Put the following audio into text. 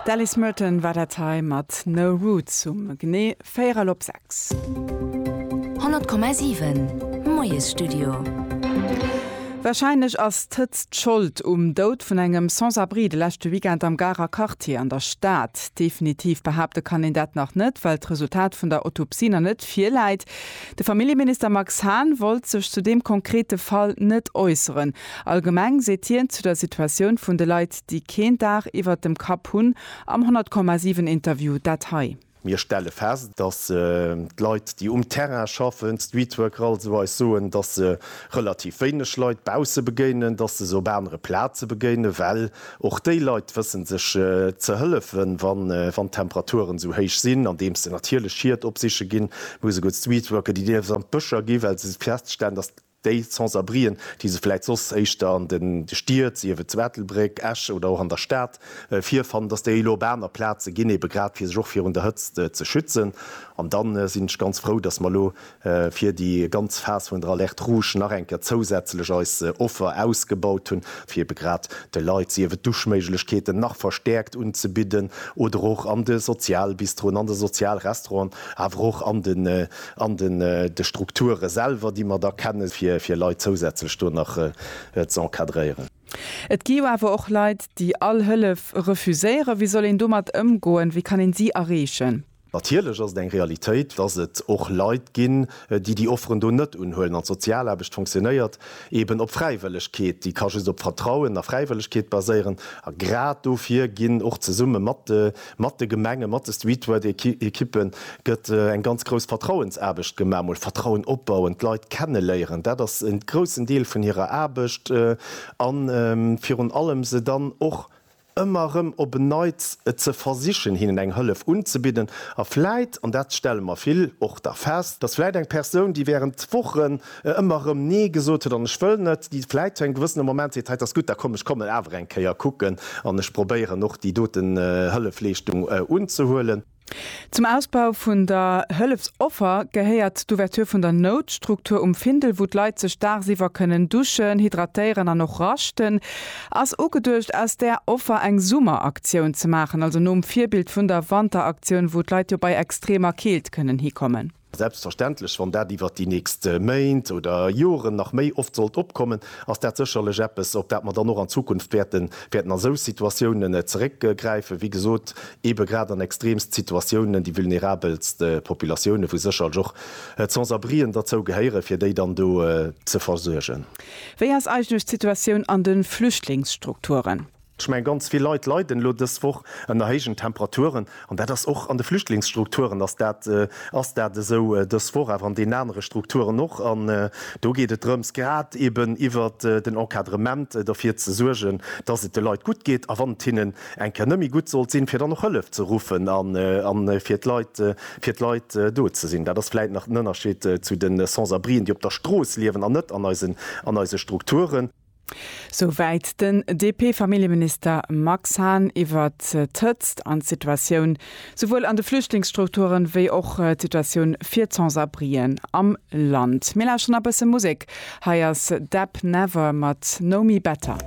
D'Alice Merton war dat hei mat No Roots um genee véierel op sechs. 100,7 Moiesstudio. Warscheinlech ass d'Hëtzt Schold um Doud vun engem Sans-abri de leschte Weekend am Garer Quartier an der Stad. Definitiv behaapte kann een dat nach net, well d'Resultat vun der Autopsie nach net virläit. De Familljeminister Max Hahn wollt sech zu deem konkrete Fall net äusseren. Allgemeng seet hien zu der Situatioun vun de Leit, déi keen Daach iwwert dem Kapp hunn, am 100, 7 Interview dat hei. Mir stelle fest, datt d'Leit, déi um Terrain schaffen, d'Streetworker also, eis soen, datt se relativ wéineg Leit bausse begéinen, datt se se op anere Plaze begéinen, well och déi Leit wëssen sech ze hëllefen, wann d'Temperaturen esou héich sinn, andeems se natierlech Schied opsiche ginn, muss e gutt Streetworker, déi dierfen an d'Bëscher ginn, well se feststellen, datt. Déi Sans-abrien, déi se vläit soss éischter an de Stied, sief et zu Ettelbréck, Esch oder och an der Stad, virfannen, dass déi elo op aner Plaze ginn, ebe grad fir sech och virun der Hëtzt ze schützen. An da sinn ech ganz frou, dass mer elo fir déi ganz Phas vun der Alerte rouge nach eng Kéier zousätzlech eis Offer ausgebaut hunn, fir ebe grad de Leit, sief et Duschméiglechkeeten nach verstäerkt unzebidden oder och an de Sozialbistroen, an de Sozialrestauranten, awer och an de An de Strukture selwer, déi mer da kennen, fir Leit zousätzlech do nach z'encadréieren. Et gi jo awer och Leit, déi all Hëllef refuséieren. Wéi soll een domat ëmgoen? Wéi kann een si erreechen? Natierlech ass et eng Realitéit, dass et och Leit ginn, déi déi Offeren do net unhuelen. An d'Sozialaarbecht funktionéiert eeben op Fräiwëllegkeet. Déi ka just op Vertrauen a Fräiwëllegkeet baséieren. A grad dofir ginn och zesumme mat de. Mat de Gemengen, mat de Streetwork-Ekippen gëtt eng ganz grouss Vertrauensaarbecht gemaach, mol Vertrauen opbauen, d'Leit kenneléieren, dat ass en groussen Deel vun hirer Aarbecht, a virun allem se dann och ëmmer erëm op en Neits ze versichen, hinnen eng Hëllef unzebidden. A vläit, an dat stelle mer vill och da fest, dass vläit eng Persoun, déi während Wochen ëmmer erëm nee gesot huet an ech wëll net déi vläit zu engem gewëssene Moment seet, hei et ass gutt, da komm ech kommen awer eng Kéier kucken an ech probéieren och déi doten Hëllefleeschtung unzehuelen. Zum Ausbau vun der Hëllefsoffer gehéiert d'Ouverture vun der Noutstruktur um Findel, wou d'Leit sech daagsiwwer kënnen duschen, hydratéieren an och raschten. Ass ugeduecht aus där Offer eng Summeraktioun ze maachen, also nom Virbild vun der Wanteraktioun, wou d'Leit jo bei extremer Keelt kënnen hikommen? Selbstverständlech, wann dat iwwert déi nächst Méint oder Joren nach méi oft sollt opkommen, ass dat sécherlech eppes, op dat mer dann och an Zukunft wäerten wäerten a sou Situatiounen zeréckgräifen, wéi gesot, eebe grad an extreemst Situatiounen, déi vulnerabelst Populatiounen, wou sécherlech och d'Sans-abrien derzou gehéieren, fir déi dann do ze versuergen. Wéi ass eigentlech d'Situatioun an de Flüchtlingsstrukturen? Ech mengen, ganz vill Leit leiden elo dës Woch ënner héijen Temperaturen. An dat ass och an de Flüchtlingsstrukturen ass dat ass dat esou dës Woch, awer an deenen anere Strukturen och. An do geet et drëms, grad eben iwwer den Encadrement derfir ze suergen, dass et de Leit gutt geet a wann et hinnen eng Kéier net méi gutt sollt sinn, fir dann och Hëllef ze ruffen a fir d'Leit fir d'Leit do ze sinn. Dat ass vläicht nach den Ënnerscheed zu de Sans-abrien, déi op der Strooss liewen an net an eisen an eise Strukturen. Souwäit den DP-Familljeminister Max Hahn iwwer d'Hëtzt an d'Situatioun souwuel an de Flüchtlingsstrukturen, wéi och d'Situatioun fir d'Sans-abrien am Land. Mir lauschteren a bësse Musek. Hei ass Deb Never mat Know Me Better.